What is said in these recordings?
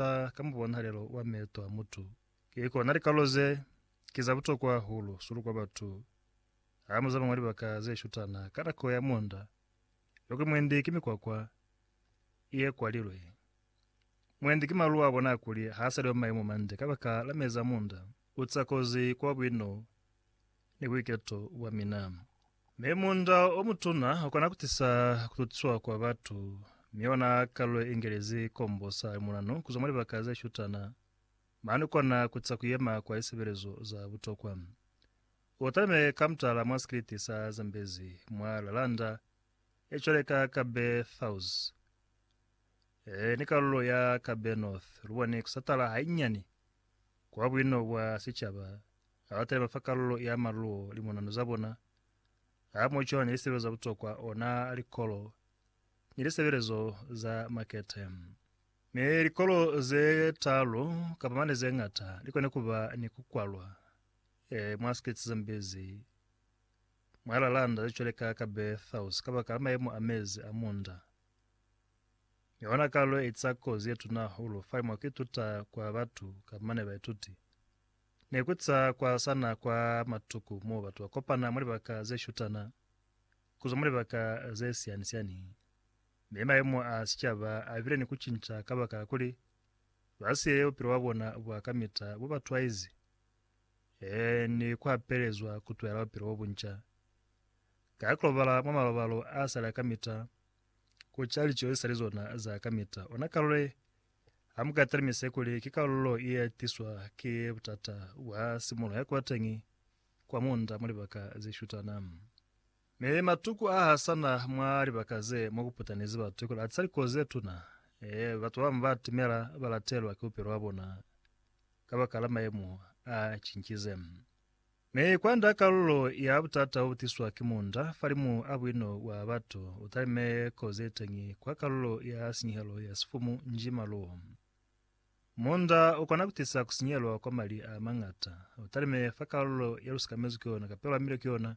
Ka, ka mubonahalelo wa meeto a mutu, ki kona likalo ze, ki za butokwa hahulu sulu kwa batu, ha mu zama mwa libaka ze shutana ka nako ya munda, yokwi mwendi ki mikwakwa ye kwalilwe, mwendi ki malu a bona kuli ha sa li wa maemo mande kabaka la mezi a munda. Ku ca kozi kwa buino ni buiketo bwa mina. Mi munda o mutuna u kona ku tisa ku tutiswa kwa batu, mi ona kalulo ye ingelezi kombo sa limunanu ku zwa mwa libaka ze shutana. Mane u kona ku tisa ku yema kwa lisebelezo za butokwa. U talime ka mutala mwa sikiliti sa Zambezi mwa Lalanda, ye cwale ka Kabe South ni kalulo ya Kabe North. Lu bone ku satala hainyani Kwa buino bwa sicaba, ha ba taliba fa kalulo ya maluo li munano za bona, ha mo cona ni lisebelo za butokwa ona likolo ni lisebelezo za makete. Mi likolo ze talu kapa mane ze ngata li kone kuba ni ku kwalwa e mwa States ze mbezi mwa lalanda ze cwale ka Kabeethous kabakala mayemo a mezi a munda. Mi hona ka lu eza kozi ye tuna hahulu fa mwa ku ituta kwa batu ka mane baituti. Ne ku za kwa sana kwa matuku mo batu ba kopana mwa libaka ze shutana ku zwa mwa libaka ze siani-sianihi. Mi mayemo a sicaba a bile ni ku cinca kabakala kuli ba siye bupilo bwa bona bwa kamita bu ba twaizi. Ee, ni kuapelezwa kutwela bupilo bobunca. Ka kulobala mwa malobalo a sali a kamita, kuca lico zesali zona za kamita, ona kalule, hamuka talimise kuli ki kalulo ye tiswa ki butata bwa simulo ya kubateñi kwa munda mwa libaka zeshutana. Ne li matuku a ha sa na mwa libaka ze mwa ku putanezi batu kuli a tisa likozi ze tuna. Ee, batu ba bañwi ba atimela ba latelwa ki bupilo bwa bona kabakala mayemo a cincize. Mi kwand'a kalulo ya butata bo bu tiswa ki munda, falimu a buino bwa batu u talime kozi ye teñi kwa kalulo ya sinyehelo ya sifumu nji maluwo. Munda u kona ku tisa ku sinyelwa kwa mali a mañata, u talime fa kalulo ye lu sikamezwi ki yona kapelwa mile ki yona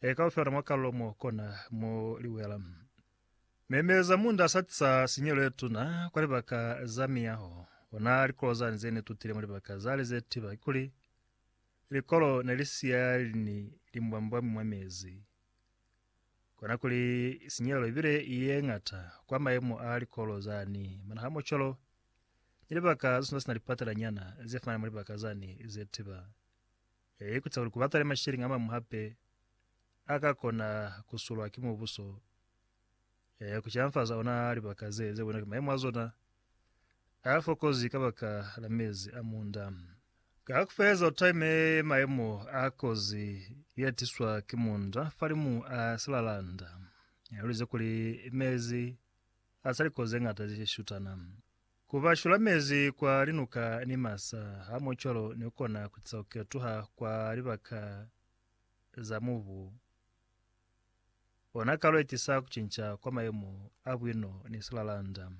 e ka lu fela mwa kalulo mo kona mo liwela. Memeza munda sa tisa sinyelo ye tuna kwa libaka za miyaho. Ona likolo zani ze ne tutile mwa libaka zale ze tiba kikuli likolo ne li siya lini limbwambwami mwa mezi. Kona kuli sinyelo ibile ye ngata kwa mayemo a likolo zani. Mana ha mocolo ni libaka ze suna sina lipatela nyana ze fana mwa libaka zani ze tiba. Ee, ku ca kuli ku batale masheleñi a mañwi hape a ka kona ku sulwa ki mubuso, ee, ku canfaza ona ha libaka ze, ze bona ki maimo a zona a fokozi kabaka la mezi a munda. Ka ku feleza, u taime maimo a kozi ye tiswa ki munda falimu a silalanda, u lize kuli mezi a sa likozi ze ñata ze shutana. Ku ba shulamezi kwa linuka ni masa hamucwalo ni kona ku tisa ku ketuha kwa libaka za mubu ona kalo ye tisa ku cinca kwa mayemo a buino ni silalanda.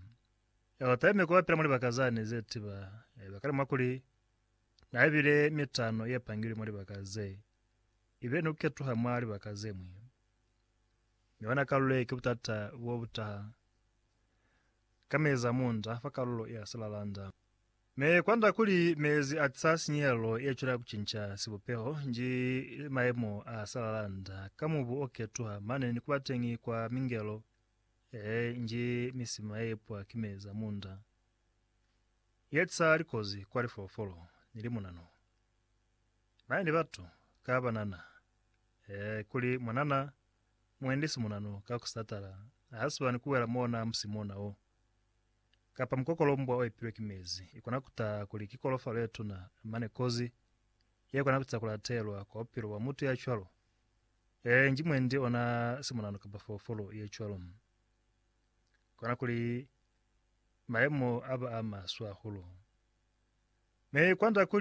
Elo taime ku bapila mwa libaka zani ze tiba haiba kale mwa kuli na bile mitano ye pangilwe mwa libaka ze ibile ni ku ketuha mwa libaka ze ñwi. Mi ona kalo ye ki butata bo bu taha. ka mezi a munda fa kalulo ya silalanda. Me kwanda kuli mezi a tisa sinyehelo ye cwela kucinca sibupeho nji maemo a silalanda ka mubu o ketuha mane ni kuba teñi kwa mingelo ee nji misima ye ipwa ki mezi a munda ye tisa likozi kwa lifolofolo ni limunanu mane ni batu ka banana ee kuli mwanana Mwendi simuna no ka ku satala ha si bani ku wela mona musi mona wo. Kapa mukokolombwa o epilwe ki mezi i kona ku taha kuli ki kolofalo ye tuna, mane kozi ye kona ku tisa ku latelwa kwa bupilo bwa mutu ya cwalo. Ee, nji mwendi ona simuna no kapa foofolo ye cwalo. Kona kuli mayemo a ba a maswe hahulu. Mi kwand'a kuli,